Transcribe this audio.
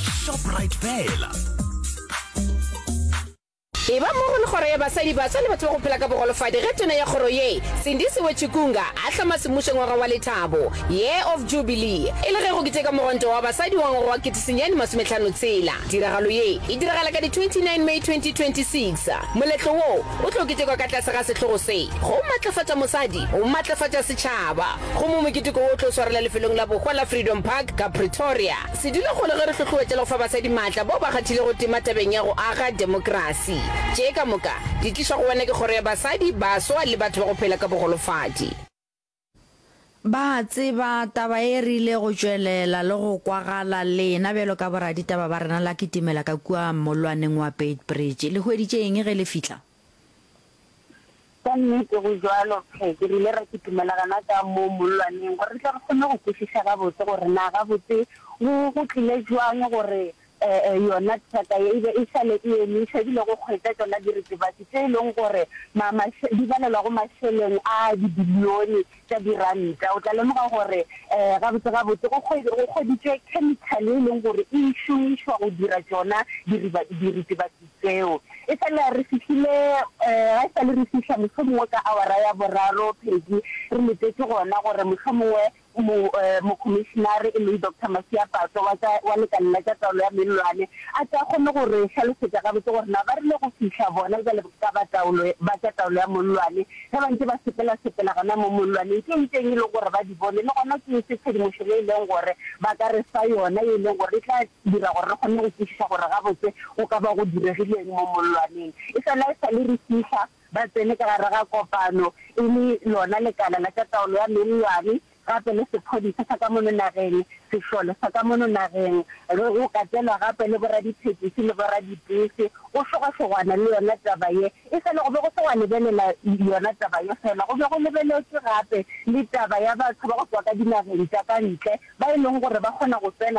shoprite fela e ba mo go le kgoro ya basadi baswa le batho ba go phela ka bogolofadi ge tona ya kgoro ye sindisi wechikunga a hlama semmušo ngwaga wa lethabo year of jubilee e le ge go keteka mogonto wa basadi wa ngwaga wa ketesenyane masometlhano tshela tiragalo ye e diragala ka di 29 may 2026 moletlo wo o tlo ketekwa ka tlase ga sehlogo se go matlafatša mosadi go matlafatša setšhaba gomme moketeko wo o tlo swarela lefelong la bohwa la freedom park ka pretoria Se dula go le ge re hlohloetša le go fa basadi maatla bao ba kgathilego tema tabeng ya go aga demokrasi. Tše ka moka di tlišwa go wena ke Kgoro ya Basadi, Baswa le Batho ba go Phela ka Bogolofadi. Ba a tseba taba e rile go tšwelela le go kwagala lena bjalo ka boraditaba ba rena la kitimela ka kua mollwaneng wa Beitbridge. Le hweditše eng ge le fihla? Ka nnete go bjalo, Phe. Ke rile ra kitimela gana ka mo mollwaneng gore re tle re kgone go kwešiša gabotse gore na gabotse go, go tlile bjang gore, e, e, yona traka ye e be e sa le e emiša, e bile go kgwetša tšona diritibatši tše e lego gore ma, maše, di balelwa go mašeleng a dibilione tša diranta, o tla lemoga gore gabotse-gabotse go kgweditšwe khemikhale e leng gore e šomišwa go dira tšona diritibatsi tseo. E sa le re fihlile, ga e sa le re fihla mohlomongwe ka awara ya boraro, Peggy, re letetše gona gore mohlomongwe Mokhomišenare, e leng Doctor Masiapato wa tša, wa lekala la tša taolo ya mellwane, a tle a kgone go re hlalosetša gabotse gore na ba rile go fihla bona bjale ka ba taolo, ba tša taolo ya mollwane, Ge ba ntše ba sepelasepela gona mo mollwaneng, ke eng teng e lego gore ba di bone, le gona ke eng se tshedimošo ye e lego gore ba ka re fa yona ye e lego gore e tla dira gore re kgone go kwešiša gore gabotse go ka ba go diregile eng mo mollwaneng? E fela e sa le re fihla, ba tsene ka gare ga kopano, e le lona lekala la tša taolo ya mellwane, gape le sephodisa sa ka mono nageng, sešole sa ka mono nageng, re o katelwa gape le boradithekisi le boradipese, go šogašogwana le yona taba ye. E sa le go be go se gwa lebelela yona taba ye fela, go be go lebeletšwe gape le taba ya batho ba go tšwa ka dinageng tša ka ntle ba e leng gore ba kgona go tsena